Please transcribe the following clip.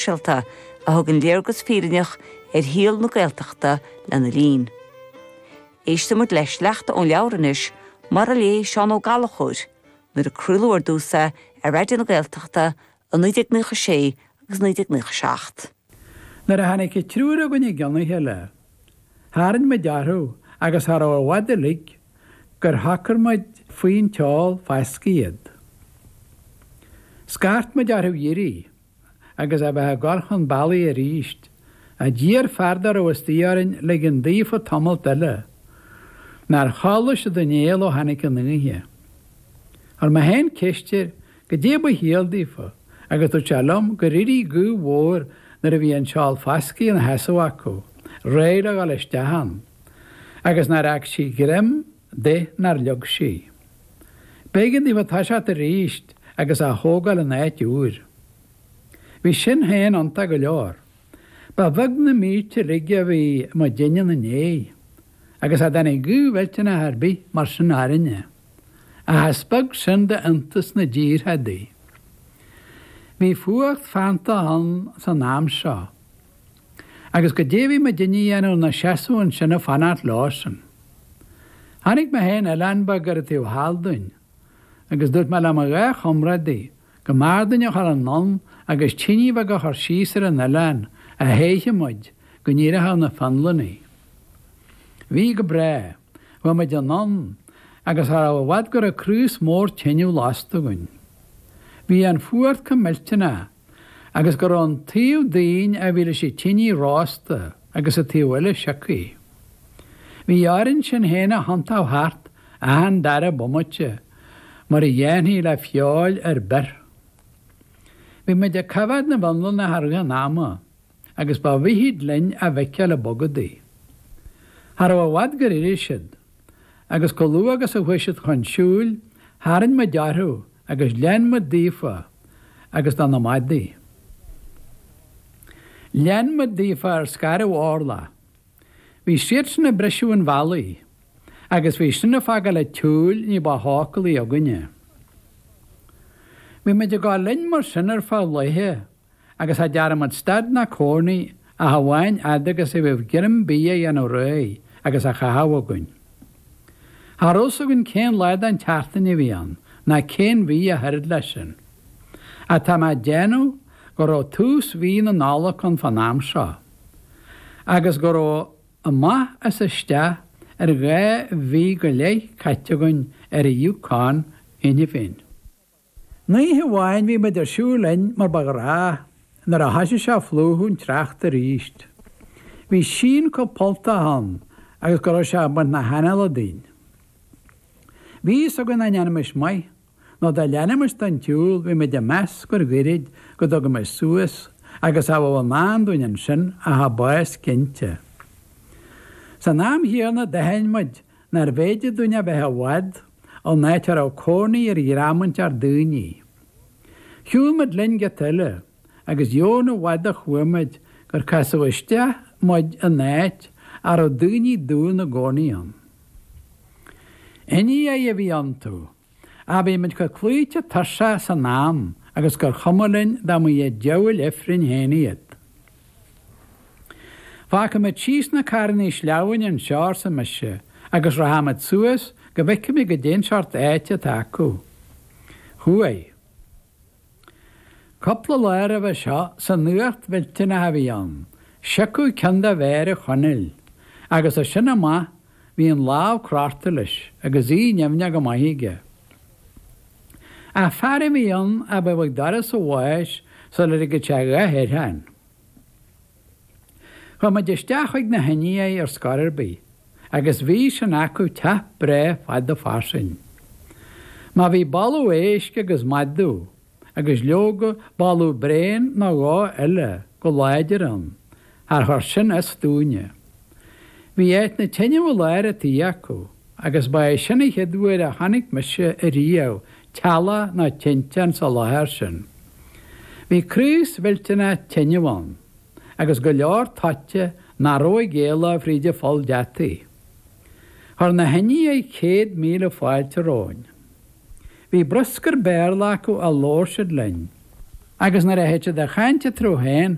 sóisialta a thugann léargas fírinneach ar shaol na Gaeltachta lena linn. Éistimid le sleachta ón leabhar anois, mar a léigh Seán Ó Gallchóir nuair a craoladh ar dtús é ar Raidió na Gaeltachta i 1996 agus 1997. Nuair a tháinig an triúr againn i gceann a chéile, tharraing muid orthu agus cha raibh i bhfad uilig gur shocair muid faoin tseál fascaidh iad. Scairt muid orthu dh'éirí. agus a bheith ag dul chun bealaigh arís, ach d'iarr fear dá raibh istigh orainn ligean daofa tamalt eile. Nár chodlaigh siad aon néal ó tháinig an oíche. Chuir mé féin ceist air goidé ba chiall daofa, agus dúirt sé liom gur éirigh gaoth mhór nuair a bhí an seál fascaidh ina sheasamh acu, réidh le dhul isteach ann, agus nár fhág sí greim de nár leag sí. B'éigean daofa toiseacht arís agus á thógáil in áit úr. Bhí sin féin iontach go leor. Ba bheag na mílte uilig a bhí muidinne ina ndiaidh, agus cha dtáinig gaoth mhillteanach ar bith mar sin orainne, ach is beag sin d'iontais na dtíortha adaí. Bhí fuacht feanntach ann san am seo. agus goidé a bheadh muidinne a dhéanamh inár seasamh ansin ag fanacht leosan. Chonaic mé féin oileán beag ar an taobh thall dínn, agus dúirt mé le mo dhá chomrádaí go mb'fhearr dúinn a dhul anonn agus tine bheag a chur síos ar an oileán a théifeadh muid go n-éireodh na Fionlannaigh. Bhí go breá, chuaigh muid anonn, agus cha raibh i bhfad go raibh craos mór tineadh lasta againn. Bhí an fuacht chomh millteanach. agus go raibh an taobh dínn a bhí leis an tine rósta agus an taobh eile siocaithe. Bhí orainn sinn fhéin a thiontú thart achan dara bomaite mar a dhéanfaí le feoil ar bith. Bhí muid ag coimhéad na bhFionlannach i rith an ama agus ba mhithid linn a bhfeiceáil ag bogadaigh. Cha raibh i bhfad gur éirigh siad. agus chomh luath agus a chuaigh siad chun siúil, tharraing muid orthu agus lean muid daofa agus do na madaidh. Lean muid daofa ar scairbh Orla. Bhí siadsan ag briseadh an bhealaigh, agus bhí sin ag fágáil an tsiúil ní ba shócúlaí againne. Bhí muid ag dul linn mar sin ar feadh laethe. agus cha dtearn muid stad ná cónaí ach amháin fhad agus a bheadh greim bídh á dhéanamh réidh agus á chaitheamh againn. Cha raibh a fhios againn cén lá den tseachtain a bhí ann ná cén mhí ach oiread leis sin. Ach tá mé ag déanamh go raibh tús mhí na Nollag ann fán am seo agus go raibh amach is isteach ar dhá mhí go leith caite againn ar an Yukon cheana féin. Aon oíche amháin bhí muid ag siúl linn mar ba ghnách, nuair a thoisigh sé a phlúchadh an tsneachta arís, bhí síon chomh polltach ann agus go raibh sé ag baint na hanála dínn. Bhí fhios againn dá ndéanfaimis maith, nó dá leanfaimis den tsiúl, bhí muid ag meas gur goirid go dtugaimis suas agus cha bheadh i ndán dúinn ansin ach bás cinnte. San am chéanna d'aithin muid nárbh fhéidir dúinn a bheith i bhfad ó áit a raibh cónaí ar dhream inteacht daoine. Shiúil muid linn giota eile agus dheamhan i bhfad a chuaigh muid gur casadh isteach muid in áit a raibh daoine dubha ina gcónaí ann. Indiaigh a bhí iontu. Ach bhí muid chomh cloíte tuirseach san am agus gur chuma linn dá mba iad diabhail ifrinn féin iad. Fágfaimid síos na carrannaí sleamhnáin anseo, arsa mise, agus rachaimid suas go bhfeicfimid goidé an seort áite atá acu. Chuaigh. Cupla lá roimhe seo san fhuacht mhillteanach a bhí ann, siocadh ceann de mhéara Chonaill, agus as sin amach, bhí an lámh craptha leis agus í nimhneach go maith aige. Ach fear a bhí ann a bheadh ag doras an bháis sula ligeadh sé a dhath air féin. Chuaigh muid isteach chuig na hIndiaigh ar scor ar bith, agus bhí sin acu teach breá fada fairsing. Má bhí boladh éisc agus madadh agus leoga, boladh bréan nó dhó eile go láidir ann, char chuir sin as dúinne. Bhí áit na teineadh i lár an tí acu, agus ba é sin an chéad uair a chonaic mise ariamh teallach ná tinteán sa láthair sin. Bhí craos mhillteanach teineadh ann, agus go leor toite nach raibh ag éaló fríd an pholl deataigh. Chuir na hIndiaigh céad míle fáilte romhainn. Bhí bruscar Béarla acu a labhair siad linn, agus nuair a théadh siad a chaint eatarthu féin,